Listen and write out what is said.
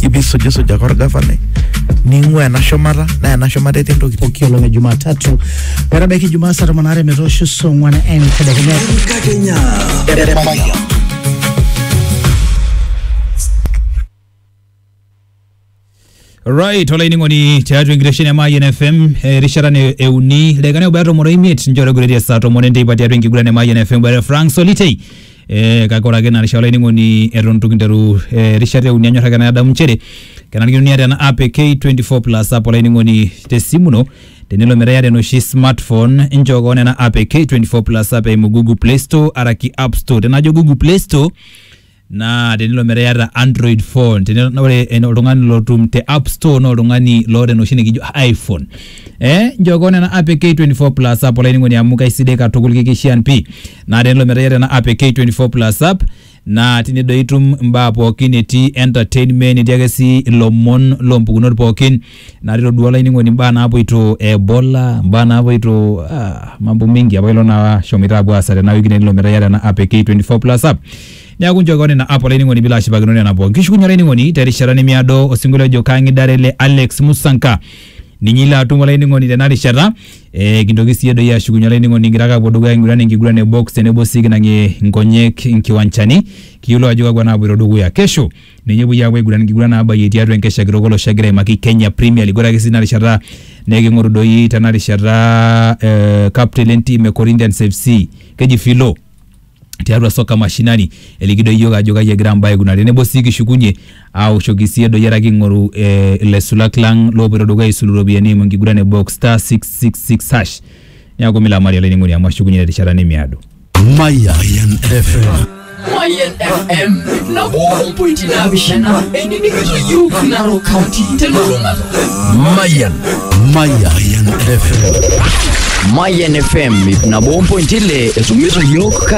ibisujisuja korgafanai ning'ua ena shumata naa ena shumata etii ntokitin pooki olong e Jumatatu metabaiki Jumaa saa tomon aare metoosho saa ong'wan entedekenya. Enkakenya. Right, olainining'oni tiatua enkitesheni e Mayian FM erishata ne euni ildaikani obaya tomon oimiet ninche oitogiroitie saa tomon enteipa tiatua enkiguran e Mayian FM boitare Frank Solitei Eh, kake ore ake ina rishata olainining'oni eton itu kinteru eh, erishata euni anyor ake nadamu nchere kenarikino niata ena app e K24 plus app olainining'oni tesimu ino tenelo metaa iyata enoshi smartphone inchoo kewon ena app e K24 plus app eimu Google Play Store araki App Store tenajo Google Play Store naa tenilo metaa iyata android phone tenilo naa ore en- oltung'ani lotum te app store naa oltung'ani loota enoshi nikijo iphone eh njoo kewon ena app e k24 plus app olainining'oni amu kaisidai katukul kikishian pii naa tenelo metaa iyata ena app e K24 plus app naa tine doi itum imbaa pookin etii entertainment etii ake sii ilomon loompukunot pookin naa tilo duo olainining'oni imbaa naapuoito e bola imbaa naapuoito ah, mambo mingi apa ilo naa shomoito apuo aasa tena wiki tenelo metaa iyata ena app e K24 plus app neaku nchoo kewon ina app olainining'oni piilo ashipakino nena pookin kishukunye olainining'oni terishata nemiado osinkolio ojo kang'idare le Alex Musanka ninye ilo atum olainining'oni tena rishata Eh, kintoki siyie doi ashukunye olainining'oni kigira ake apuo dukuya aing'uran enkiguran e box tenebo sii kinang'ie nkonyek nkiwanchani kiyiolou ajo kakwa naapuoito dukuya kesho ninye epuoi aapuo aiguran nkiguran naabayie tiatua enkesha kitok olosho egira aimaki Kenya Premier League ore ake sii tina rishata neking'oru doi tena rishata eh, captain lentim e Corinthians FC keji Philo tiatua soka mashinani eliki doi iyiook ajo kai egira mbaa aikunari tenebo sii kishukunye aoshoki sii edoyiata king'oru eh, ilaisulak lang loopoito dukuya aisulu iropiyiani eimu enkiguran e box star 666 hash neeku milamari olainining'oni amu ashukunye terishata nemiado Mayan FM. Mayan FM nabo ompointi naapishana enining'ito iyiook Narok County telulung'ata. Mayan. Mayan FM. Mayan FM ip nabo ompointi ile esumiso yiok kaji